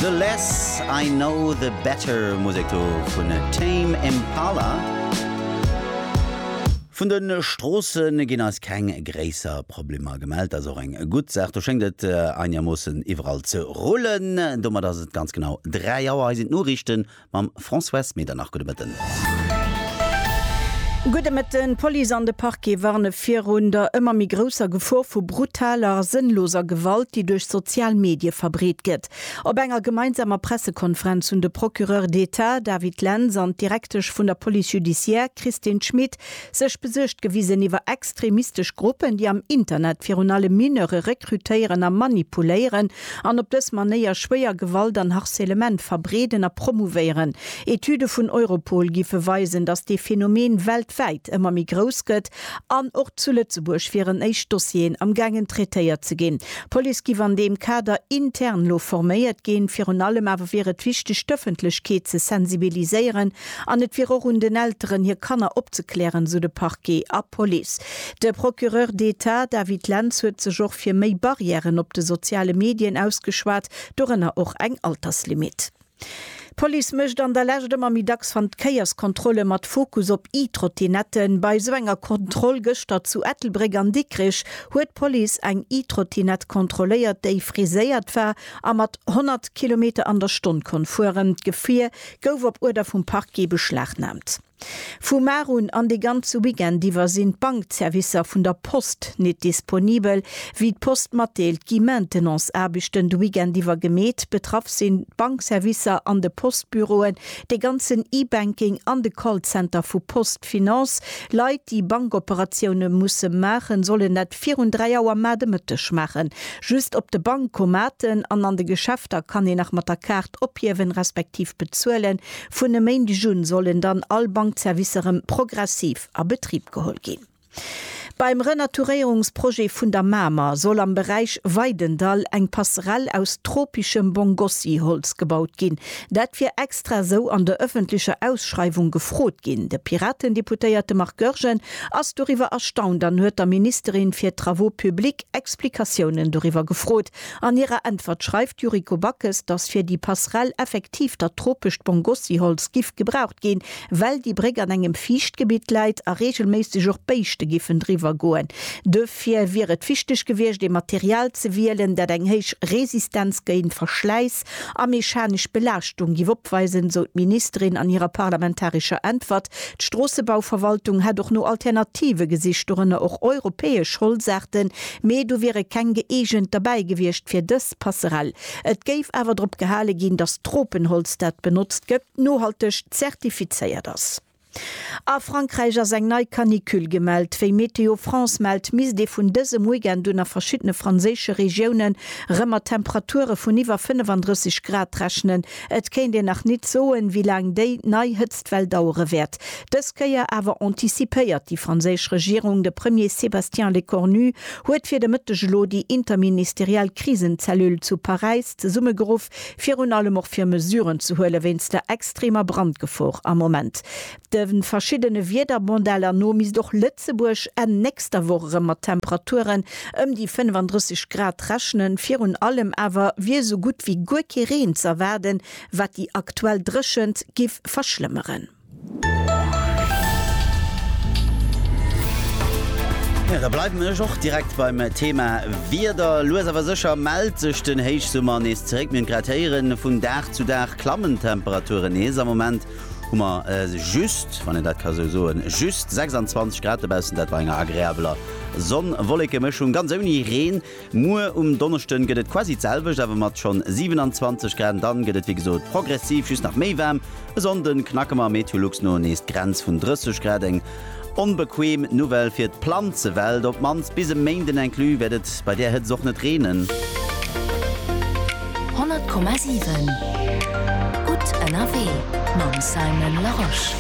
The less I know the better, Musek do vun Tame Impala. Vun den Stroossen ginn eis keng gréisser Problemer gemellt, dat ass och eng gutt Saach. Do schéngt et einigermoossen iwwerall ze rullen. Domat ass et ganz genau 3 Auer. Hei sinn d'Noriichten Mam Françoise Medernach, gudde Mëtten. Gudde Mëtten. D'Police an de Parquet warne virun der ëmmer méi grousser Gefor vu brutaler a sënnloser Gewalt, déi duerch sozial Medie verbreet gëtt. Op enger gemeinsamer Pressekonferenz hunn de Procureur d'Etat David Lenz an d'Direktesch vun der Police judiciaire Christine Schmit Sech besuergt gewisen iwwer extremistesch Gruppen, déi am Internet virun allem Mineure rekrutéieren a manipuléieren an op dës Manéier schwéier Gewalt an Harcèlement verbreeden a promouvéieren. Etüde vun Europol géife weisen, datt dee Phänomen weltwäit ëmmer méi grouss gëtt an och zu Lëtzebuerg wieren éischt Dossieren am gaangen traitéiert ze ginn. D'Police géif an deem Kader intern elo forméiert ginn. Virun allem awer wier et wichteg d'Ëffentlechkeet ze sensibiliséieren An et wier och un den Elteren, hir Kanner opzeklären, sou de Parquet a Police. De Procureur d'Etat David Lentz huet sech och fir méi Barrièren op de soziale Medien ausgeschwat, dorënner och eng Alterslimit. D'Police mécht an der Lescht ëmmer méi dacks Vandkéierskontrolle mat Fokus op E-Trottinetten. Bei esou enger Kontroll gëschter zu Ettelbréck an Dikrich huet d'Police eng E-Trottinett kontrolléiert, déi friséiert war a mat 100 Kilometer an der Stonn konnt fueren. D'Gefier gouf op Uerder vum Parquet beschlagnaamt. Vu mar un an de ganze Weekend iwwer sinn d'Bankzerwisser vun der Post nit disponibel. Wéi d'Post matdeelt, gi Maintenance-Aarbechten de Weekend iwwer gemeet. Betraff sinn d'Bankzerwisser an de Postbüroen, de ganzen E-Banking an de Callcenter vu PostFinance. Leit, déi Bankoperatioune musse maachen, sollen dat virun 3 Auer mar de Mëtteg maachen. Just op de Bankomaten an an de Geschäfter kann een nach mat der Kaart. D'Ophiewen, respektiv Bezuelen vun e Méindeg un, sollen dann all Bankzerwisser erëm progressiv a Betrib geholl ginn. Beim Renaturéierungsprojet vun der Mamer soll am Beräich Weidendall eng Passerell aus tropischem Bongossi-Holz gebaut ginn. Dat wier extra esou an der ëffentlecher Ausschreiwung gefrot ginn. De Piraten-Deputéierte Marc Goergen ass doriwwer erstaunt an huet der Ministerin fir Travaux publics Explikatiounen doriwwer gefrot, An hirer Äntwert schreift d'Yuriko Backes, datt fir déi Passerell effektiv dat tropescht Bongossi-Holz giff gebraucht ginn, well déi Bréck an engem Fiichtgebitt läit a reegelméisseg och Béischte giffen driwwer goen. Duerfir wier et wichteg gewiescht, ee Material ze wielen, dat eng héich Resistenz géint Verschläiss a mechanesch Belaaschtung giff opweisen, sou d'Ministerin an hirer parlamentarescher Äntwert. D'Stroossebauverwaltung hätt och no Alternative gesicht, dorënner och europäesch Holzaarten, mee do wiere keng gëeegent derbäi gewiescht fir dës Passerell. Et géif awer drop gehale ginn, datt d'Tropenholz, dat benotzt gëtt, nohalteg zertifizéiert ass. A Frankräich ass eng nei Canicule gemellt. Wéi Météo France mellt, misst ee vun dësem Weekend un a verschiddene franséische Regiounen erëm mat Temperature vun iwwer 35 Grad rechnen. Et kéint een nach nit soen, wéi laang déi nei Hëtztwell dauere wäert. Dës Kéier awer antizipéiert déi franséisch Regierung. De Premier Sébastien Lecornu huet fir de Mëtteg elo déi interministeriell Krisenzellule zu Paräis zesummegeruff, virun allem och fir Mesuren ze huele wéinst der extremer Brandgefor am Moment. De verschiddene Wiedermodeller no misst och Lëtzebuerg Enn nächster Woch erëm mat Temperaturen ëm déi 35 Grad rechnen. Virun allem awer wier esou gutt wéi guer kee Reen ze erwaarden, wat déi aktuell Dréchent giff verschlëmmeren. Jo, da bleiwen ech och direkt beim Thema Wieder. Lues awer sécher mellt sech den Héichsummer nees zeréck. Mir hunn et grad héieren, vun Dag zu Dag klammen d'Temperaturen nees. Am Moment Hu mer just, wann een dat ka sou soen, just 26 Grad dobaussen, dat bei enger agreabeler Sonn-Wolleke-Mëschung, ganz ouni Reen. Muer um Donneschden gëtt et quasi d'selwecht, awer mat schonn 27 Grad. An dann gëtt et wéi gesot progressiv just nach méi waarm. E Sonnde knacke mer Meteolux no nees d'Grenz vun 30 Grad, eng Onbequem Nouvelle fir d'Planzewelt, op d'mannst bis e Méinden inclus wäert et bei där Hëtzt och net reenen. 100,7 Gutt ënnerwee mam Simon Larosche.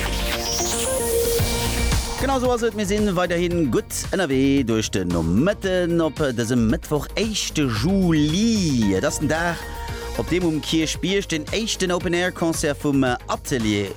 Genau sou ass et, mir sinn weiderhi gutt ënnerwee duerch den Nomëtten op dësem Mëttwoch, éischte Juli. Et ass den Dag Op deem um Kierchbierg den éischten Open Air Concert vum Atelier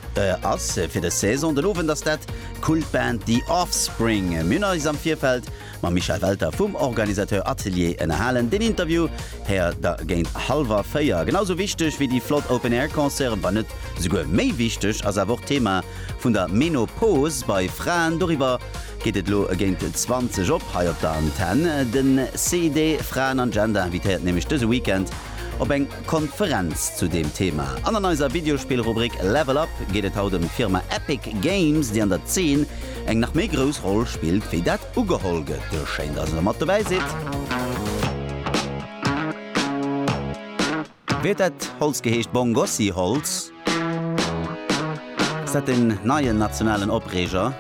ass fir dës Saison. Den Owend ass dat d'Kultband The Offspring. Mir hunn eis am Virfeld mam Michel Welter vum Organisateur Atelier ënnerhalen. Den Interview héiert der géint hallwer 4. Genau sou wichteg wéi déi flott Open Air Concerten, wann net souguer méi wichteg, ass awer och d'Thema vun der Menopause bei Fraen. Doriwwer Geet et elo géint 20 op hei op der Antenn. De CID Fraen an Gender invitéiert nämlech dëse Weekend op eng Konferenz zu deem Thema. An an eiser Videospill-Rubrik Level Up geet et haut ëm d'Firma Epic Games, déi an der Zeen eng nach méi grouss Roll spillt, wéi dat ugeholl gëtt. Schéin, dass der mat dobäi sidd! Wéi huet dat Holz geheescht? Bongossi-Holz? Ass dat den neien nationalen Opreeger?